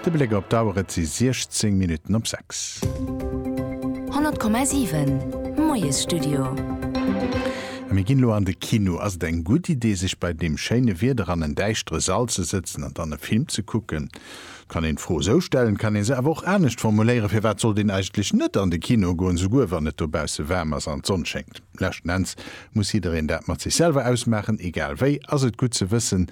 De Bléck op d'Auer, et si 16 Minutten op 6. 100,7, Moiesstudio. A mir ginn elo an de Kino. Ass et eng gutt Idee, sech bei deem schéine Wieder an en däischtere Sall ze sëtzen an dann e Film ze kucken? Et kann een d'Fro esou stellen, et kann ee se awer och anescht formuléieren, Firwat sollt een eigentlech net an de Kino goen, esouguer wann et dobausse waarm ass an d'Sonn schéngt? Leschten Enns muss jiddereen dat mat sech selwer ausmaachen. Egal wéi ass et gutt ze wëssen,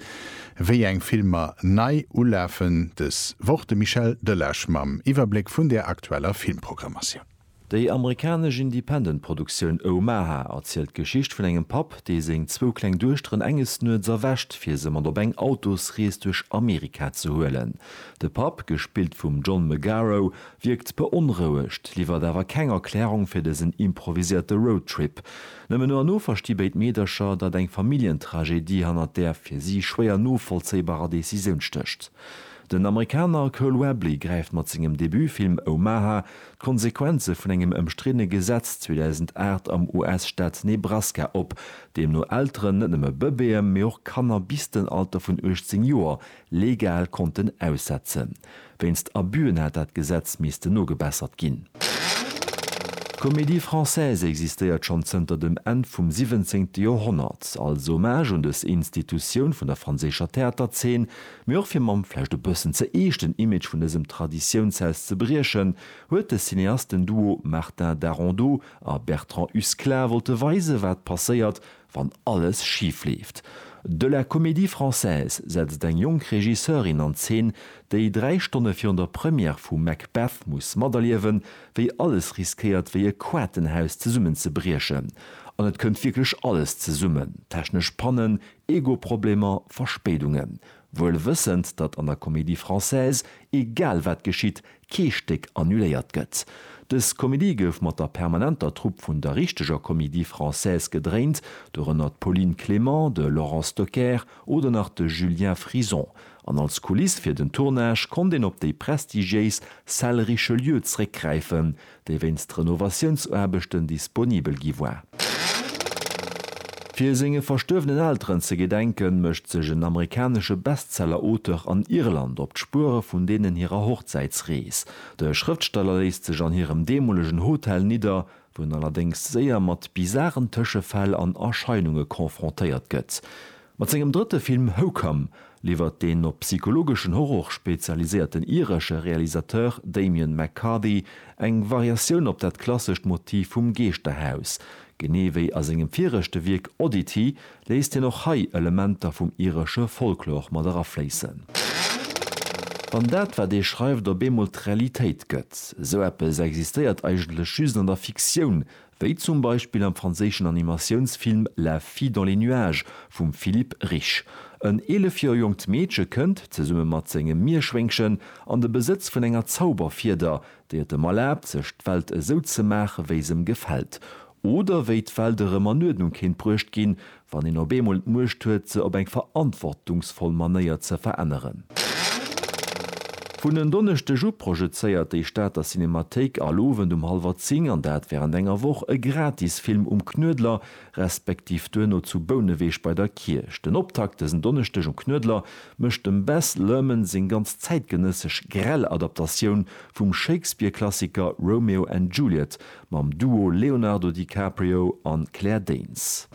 Wéi eng Filmer nei ulafen dës Woch? De Michel Delage mam Iwwerbléck vun der aktueller Filmprogrammatioun. Déi amerikanesch Independent-Produktioun Omaha erzielt d'Geschicht vun engem Papp, dee seng zwou kleng Duechteren enges Nuets erwächt, fir se mat op eng Autosrees duerch Amerika ze huelen. De Papp, gespillt vum John Magaro, wierkt beonrouegt, liwwert awer keng Erklärung fir dësen improviséierte Roadtrip. Nëmmen no an no versti béid Meedercher, datt eng Familljentragedie hannert där fir si schwéier novollzéibarer Decisioun stécht. Den Amerikaner Cole Webley gräift mat sengem Debutfilm Omaha d'Konsequenze vun engem ëmstriddene Gesetz 2008 am US-Staat Nebraska op, deemno Elteren net nëmme Bëbeeë mee och Kanner bis den Alter vun 18 Joer legal konnten aussetzen. Wéinst Abüen hätt dat Gesetz missten nogebessert ginn. D'Comédie Française existéiert schonn zënter dem Enn vum siwwenzéngte Joerhonnert, als Hommage un dës Institutioun vun der franséischer Theaterzeen, mee och fir mam vläicht e bëssen ze eeschten Image vun dësem Traditiounshaus ze briechen, huet de Cineastenduo Martin Darondeau a Bertrand Husklah wollte weisen, wat passéiert, wann alles schif leeft. De La Comédie Française setzt eng jonk Regisseurin an Zeen, déi dräi Stonne virun der Première vu Macbeth muss materliewen, wéi alles riskéiert wéi e Quatenhaus zesummenzebriechen. An et kënnt wierklech alles zesummen, technesch Pannen, Ego-Problemer, Verspéidungen. Wuel wëssend, datt an der Comédie Française egal wat geschitt, kee Stéck annuléiert gëtt. Dës Komedie gouf mat der permanenter Trupp vun der richteger Comédie Française gedréint, dorënner d'Pauline Clément, de Laurent Stocker oder nach de Julien Frison, an als Kuliss fir den Tournage konnt een op déi prestigiéis Salle Richelieu zréckgräifen, déi wéinst Renovatiounsaarbechten disponibel gi war. Fir senge verstuerwenen Elteren ze gedenken, mécht sech en amerikanesche Bestseller-Auteur an Irland op d'Spuere vun deenen hirer Hochzäitsrees. De Schrëftsteller léisst sech an hirem deemolegen Hotel nidder, wou en allerdéngs séier mat bizaren Tëschefäll an Erscheinunge confrontéiert gëtt. Mat sengem drëtte Film Hokum liwwert den op psychologeschen Horror spezialiséierten iresche Realisateur Damian McCarthy eng Variatioun op dat klassescht Motiv vum Geeschterhaus. Genee wéi a sengem viregte Wierk Oddity léisst hien och hei Elementer vum iresche Folklor mat erafléissen. Wann dat, wat ee schreift, op eemol d'Realitéit gëtt, esou eppes existéiert eigentlech just an der Fiktioun, Wéi zum Beispill am franséischen Animatiounsfilm La fille dans les nuages vum Philippe Rich. En 11 Joer jonkt Meedche kënnt, zesumme mat sengem Mierschwéngchen, an de Besëtz vun enger Zauberfieder, déi et em erlaabt, sech d'Welt esou ze maache wéi s'em gefält. Oder wéi d'Welt erëm an Uerdnung kéint bruecht ginn, Wann een op eemol d'Muecht huet, se op eng verantwortungsvoll Manéier ze veränneren. Vun en Donneschdeg u projezéiert déi Stater Cinemathéik all Owend um hallwer 10, an dat wärend enger Woch, e Gratisfilm um Knuedler, respektiv duerno zu Bouneweg bei der Kierch. Den Optakt dësen Donneschdeg um Knuedler mécht dem Baz Luhrmann seng ganz zäitgenëssesch grell Adaptatioun vum Shakespeare-Klassiker Romeo and Juliet mam Duo Leonardo DiCaprio an Claire Danes.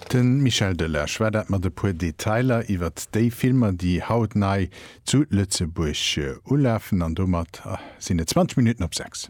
De Michel Delage war dat mat e puer Detailer iwwert déi Filmer, déi haut nei zu Lëtzebuerg ulafen. An domat sinn et 20 Minutten op 6.